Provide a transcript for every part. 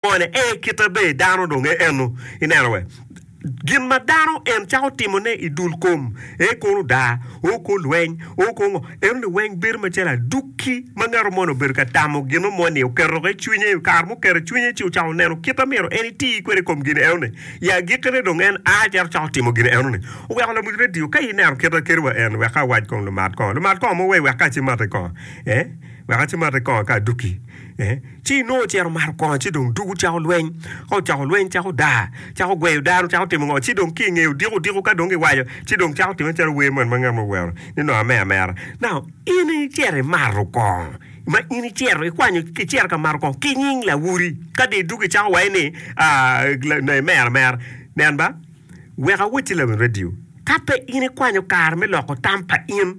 Ene e kite be dano dong e eno. I neno we? Gin ma dano en cako timo ne i dul kom, e kono daa, o ko lweny, o ko ngo, eno ni weng bedo macalo adukki ma ngato moni obedo ka tamo gino mo ni oketo ki i cwinye, i kare muketo i cwinye ci ocako neno kit ma myero en iti kwede i kom gin eno ni. I agikki ne dong en a cito cako timo gin eno ni. Oweko lamony radio ka i neno kit ma keri wa en wek awac kong lumat kongo, lumat kongo mo wei wek ka ci mati kongo, eh, wek aci mati kongo ka adukki. Ci Nua ocito omato kongo, ci dong dugo cako lweny. Ka ocako lweny, cako daa, cako gweyo dano, cako timo ngo, ci dong ki i ngeye odiko odiko, ka dong giwaco, ci dong cako timme calo wer moni ma ngat mo wero ni nongo amer amera. Now, in icito imato kongo, ma in icito ikwanyo, icito ka mato kongo ki nying lawoti, ka dong idugo icako waco ni nongo imer amera. Nen ba, wek awacci lamin radio, ka pe in ikwanyo kare me loko tam pa in,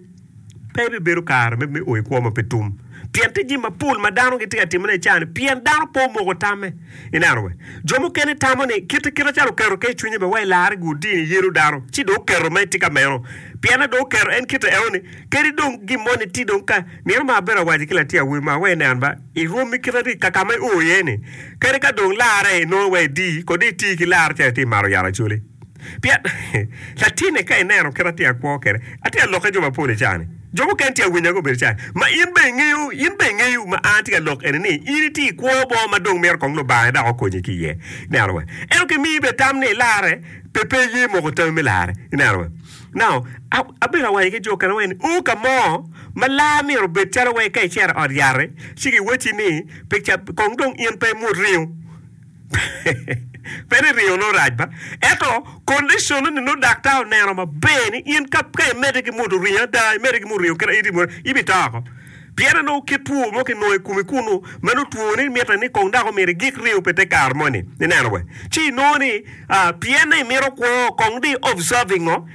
Pe ibibedo kare me o i kwo ma pe tum, pien tye jami mapol ma dano gitye ka timone i caa-ni pien dano pe omoko tamme. I neno bene, jo mukene tamo ni kite kite calo oketo kec i cwinye bene wai larre gi odii ni yelo dano, ci dong oketo ma etye ka meno. Pien adong oketo en kite eno-ni, kadi dong gin moni tye dong ka, myero ma abedo awaco ki latin awobi ma, wai nen ba, irom i kite adi ka ka ma io iye-ni? Kadi ka dong larre inongo wai idii, kodo iti ki larre calo itye ka mato yat acoli. Pien, latinne ka ineno kit ma atye ka kwo kwede, atye ka lokke jo mapol i caa-ni. Jo mukene tye ka winya gubedo caa ni, 'Ma in bene ingeyo, in bene ingeyo ma an atye ka lok eni ni? In itye ka kwo bo ma dong mito kong Lubanga ni dok okonyi ki iye. Ineno? Ento kimiyo bene tam ni ilarre, pe, pe iye moko tami me larre. Ineno? Nao, a, abedo ka wanyo ki jo okene weng ni, Oo, ka mo ma lar myero obed calo wai ka icito i ot yat-ri, ci giwacci ni, Pe ca, kong dong in pe imut ringo. Pe ni ringo nongo rac ba, ento kondiconne-ni nongo daktar oneno maber ni in ka imedde ki modo ringo ada, imedde ki modo ringo kit ma in itimo-ni, in bito oko. Pien ni nongo kit two mo kinongo i komi kunnu ma nongo twoni mitte ni kong dok omyero igik ringo pi te kare moni. Ineno wee? Ci inongo ni pienni imito kwo, kong di observe-ingo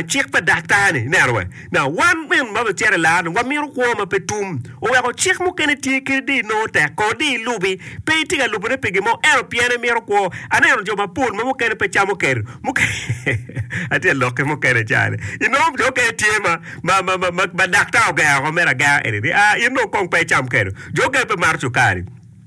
cik pa daktar-ni. Ineno wee? Now, wan min ma wutyer i lar-ni wamito kwo ma pe tum. Oweko cik mukene tye kadi di inongo tek ko di ilubi. Pe itye ka lubone pi gin mo, ento pien imito kwo. Aneno jo mapol ma mukene pe camo ker, mukene, atye ka lokke mukene cani, inongo jo mukene tye ma, ma, ma, ma, ma, ma daktar ogero woko mere agera eni ni, aa, in dong kong pe icam ker. Jo mukene pe mato cukari.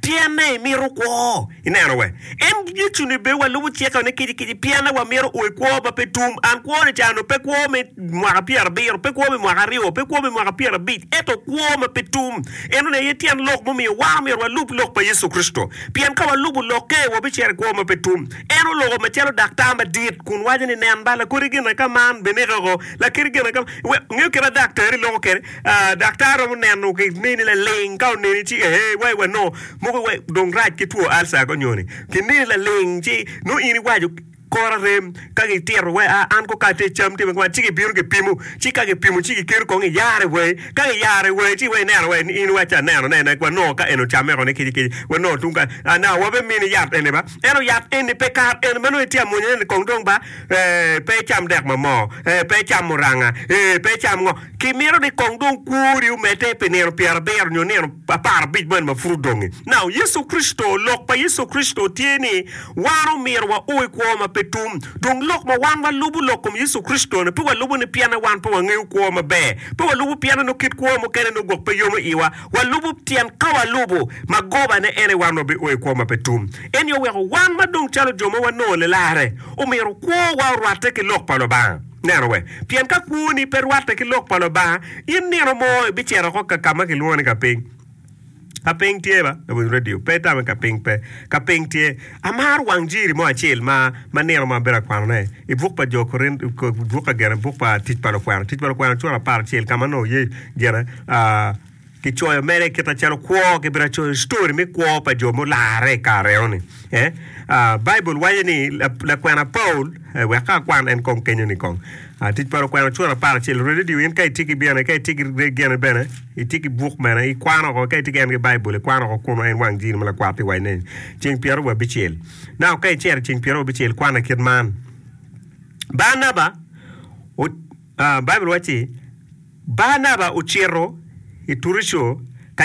Pienne imito kwo? I neno we? En Yecu ni be wa lubo cike one kici kici pienne wa mito oe kwo ma pe tum. And kwo ni cano pe kwo me mwaka pier abiro, pe kwo me mwaka aryo, pe kwo me mwaka pier abic, eto kwo ma pe tum. Eno ne aye tyen lok mumiyo wa myero wa lub lok pa Yecu Kricito. Pien ka wa lubo lokke, wa bi cito i kwo ma pe tum. En oloko ma calo daktar ma dit kun waco ni nen ba lakodi gin aka man, beneke oko, lakedi gin aka man. Ngeyo kit ma daktari loko kede? Daktar romo neno ki mini laling ka oneni ci ee wai wa nongo mogo wa dong rac ki two alca ko nyoni ki mini laling ci nongo in iwaco kor arem ka gi tito wa a an ko kati cam tye makwar ci ki bino ki pimo ci ka ki pimo ci ki keto kong iyare wa ka ki yare wa ci wa ineno wa in iwaco ca aneno ne wa nongo ka en ocame ko ni kici kici wa nongo tung kany a na wa be mini yat eni ba ento yat eni pe kar eni ma nongo itye amwonya ni kong dong ba ee pe icam dek ma moo ee pe icam muranga ee pe icam ngo. Kimito ni kong dong kwori omedde pi nino pyerabiro nyo nino apar abic moni ma pud odongi. Now, Yecu Kricito, lok pa Yecu Kricito tye ni wan omyero wao i kwo ma pe tum. Dong lok ma wan walubo lok kom Yecu Kricito-ni, pe walubo ni pienne wan pe wangeyo kwo maber, pe walubo pienne nongo kit kwo mukene nongo gwok pe yomo iwa, walubo pien ka walubo magobane en aye wan wabio i kwo ma pe tum. Ento weko wan ma dong calo jo ma wanongo lilarre, omyero kwowa orwatte ki lok pa Lubanga. Neno we, pien ka kwoni pe rwatte ki lok pa Lubanga, in nino mo ibicito oko ka ka ma kilwongo ni ka piny. Ka piny tye ba? Lawiny radio pe itame ka piny pe. Ka piny tye. Amaro wang jiri mo acel ma ma nino mo abedo ka kwanone i buk pa Jo Korint, buk ka gene buk pa Tic pa Lukwena, Tic pa Lukwena cura apar acel ka ma nongo ye gene, aa, Kicoyo mere kite calo kwo, kibira coyo story me kwo pa jo mularre i kare eno ni. Eh, ah, Baibul waco ni la- lakwena Paul, eh, wek ka akwan en kong kenyo ni kong. Ah, tic pa lakwena cura apar acel, radio in ka itye ki bene, ka itye ki re- gene bene, itye ki buk bene, ikwano oko, ka itye ki en ki Baibul, ikwano oko kunu en wang jiri ma lakwat ti waco ni ceng pyero wiye abicel. Now, ka icero ceng pyero wiye abicel, kwane kit man. Barnaba, o- Baibul wacci, Barnaba ocito i Turico ka.